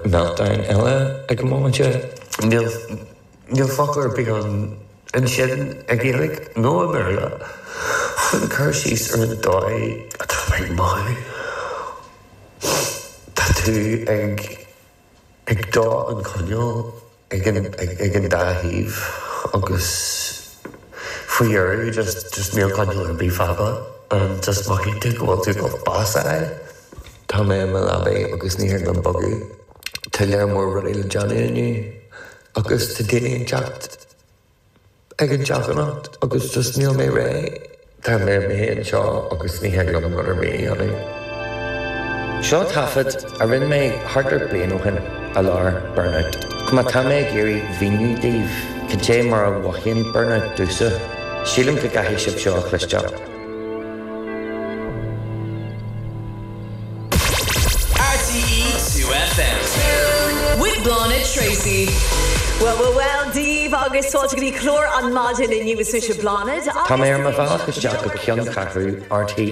meltdown eile ag an móimint. Níl focal ar bith ann ansin i nGaeilge nó i mBéarla chun cur síos ar an dóigh atá mé ag mothú. Tá tú ag dó an choinnil. ag an dá thaobh agus faoi dheireadh just just níl coinneal ar bith fágtha agus just mothaíonn tú go bhfuil tú about bás a fháil. Tá mé i mo leabaidh agus ní thig liom bogadh. Tá lear mór rudaí le déanamh inniu agus tá daoine ag teacht. ag an teach anocht agus just níl mé réidh. Tá mé ar mo shuí anseo agus ní thig liom rud ar bith a dhéanamh. Seo taifead a rinne mé thart ar bliain ó shin i lár burnout. Má tá mé ag iarraidh mhíniú daoibh cad é mar a mhothaíonn burnout domhsa, sílim go gcaithfidh sibh seo a chloisteáil. RTÉ 2FM. With Bláthnaid Treacy. Well, well, well, daoibh agus fáilte go dtí clár na maidine inniu. Is mise Bláthnaid agus. Tá mé ar mo bhealach isteach chuig ceanncheathrú RTÉ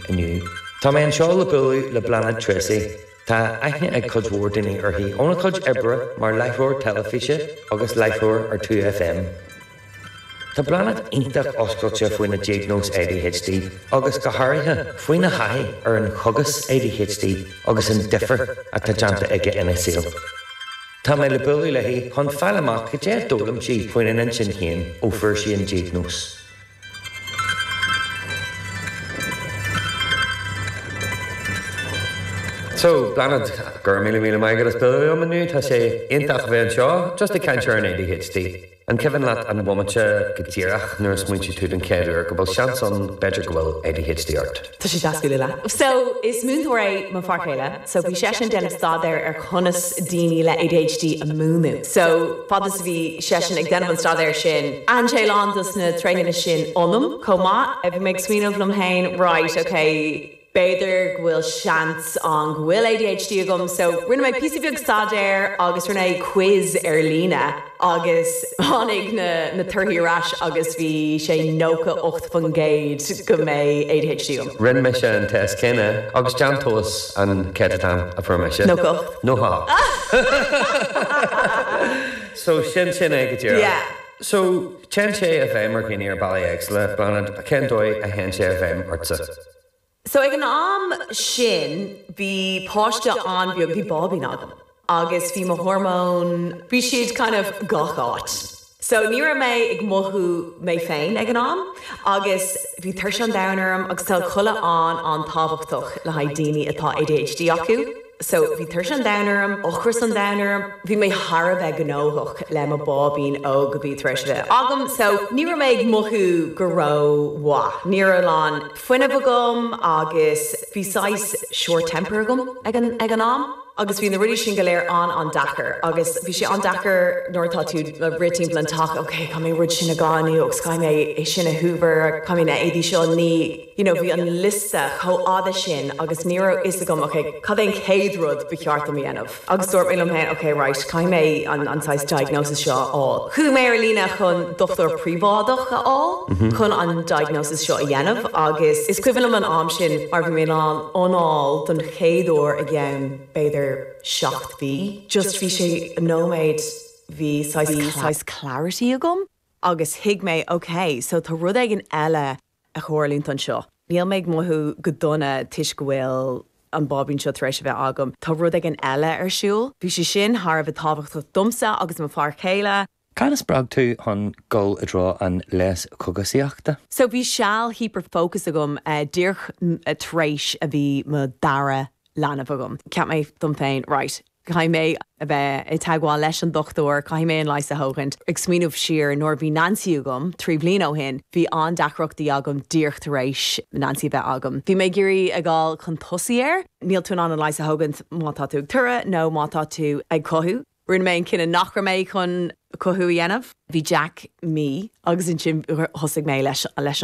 inniu. Tá mé anseo le bualadh le Bláthnaid Treacy. Tá aithne ag cuid mhór daoine uirthi óna cuid oibre mar láithreoir teilifíse agus láithreoir ar 2FM. Tá Bláthnaid iontach oscailte faoina diagnóis ADHD agus, go háirithe, faoina taithí ar an chógas ADHD agus an difear atá déanta aige ina saol. Tá mé le bualadh léi chun fáil amach cad é a d'fhoghlaim sí faoina hintinn féin ó fuair sí an diagnóis. So, Bláthnaid, go raibh míle míle maith agat as bualadh liom inniu. Tá sé iontach a bheith anseo just ag caint ar an ADHD. An cuimhin leat an bomaite go díreach nuair a smaointigh tú den chéad uair go bhfuil seans ann, b'fhéidir go bhfuil ADHD ort? Tá sé deas bualadh leat. So, is múinteoir é mo fear chéile so bhí seisean ag déanamh staidéar ar conas daoine le ADHD a mhúineadh. So, fad is a bhí seisean ag déanamh an staidéar sin, aithin sé a lán dos na tréithe sin ionam chomh maith. Bhí mé ag smaoineamh liom féin, right, okay, b'fhéidir go bhfuil seans ann go bhfuil ADHD agam so rinne mé píosa beag staidéir agus rinne mé quiz ar líne agus tháinig na na torthaí ar ais agus bhí sé nócha ocht faoin gcéad go mbeadh ADHD agam. Rinne mise an test céanna agus déan tomhas cén céatadán a fuair mise. Nócha ocht. Nócha ocht. So sin sin é go díreach. Yeah. So téann sé i bhfeidhm ar dhaoine ar bhealaí éagsúla, Bláthnaid, cén dóigh a théann sé i bhfeidhm ortsa? So ag an am sin bhí páiste an-bheag, bhí báibín agam agus bhí mo hormóin, bhí siad kind of gach áit. So ní raibh mé ag mothú mé féin ag an am agus bhí tuirse an domhain orm agus tá codladh an-an-tábhachtach le haghaidh daoine atá ADHD acu. So, bhí tuirse an domhain orm, ocras an domhain orm, bhí mé thar a bheith gnóthach le mo báibín óg a bhí tar éis teacht agam, so, ní raibh mé ag mothú go ró mhaith, ní raibh a lán fuinnimh agam agus bhí saghas short temper agam ag an am agus bhí na rudaí sin go léir an-an-deacair agus bhí sé an-deacair nuair atá tú ag rith timpeall an teach, ok, caithfidh mé an rud sin a glanadh agus caithfidh mé é sin a hoover, caithfidh mé na éadaí seo a ní. you know bhí an liosta chomh fada sin agus ní raibh fhios agam ok cad é an chéad rud ba cheart dom a dhéanamh agus dúirt mé liom féin ok right caithfidh mé an an saghas diagnosis seo a fháil. Chuaigh mé ar líne chun dochtúir príobháideach a fháil chun an diagnosis seo a dhéanamh agus is cuimhin liom an am sin mar bhí mé in ann anáil don chéad uair i gceann b'fhéidir seacht mí just bhí sé an nóiméad bhí saghas clarity agam agus thuig mé ok so tá rud éigin eile ag tarlúint anseo. Níl mé ag mothú go dona toisc go bhfuil an báibín seo tar éis a bheith agam. Tá rud éigin eile ar siúl. Bhí sé sin thar a bheith tábhachtach domsa agus mo fear céile. Cad a spreag tú chun dul i dtreo an leigheas cógaisíochta? So bhí seal hyper focus agam díreach tar éis a bhí mo dara leanbh agam. Cheap mé dom féin right. Caithfidh mé a bheith i dteagmháil leis an dochtúir, caithfidh mé an leigheas a thógaint. Ag smaoineamh siar, nuair a bhí Nancy agam, trí bliana ó shin, bhí an-deacrachtaí agam díreach tar éis Nancy a bheith agam. Bhí mé ag iarraidh ag dul chun tosaigh air. Níl tú in ann an leigheas a thógaint má tá tú ag iompar nó má tá tú ag cothú. Rinne mé an cinneadh nach raibh mé chun cothú a dhéanamh. Bhí Jack mí agus ansin thosaigh mé leis an.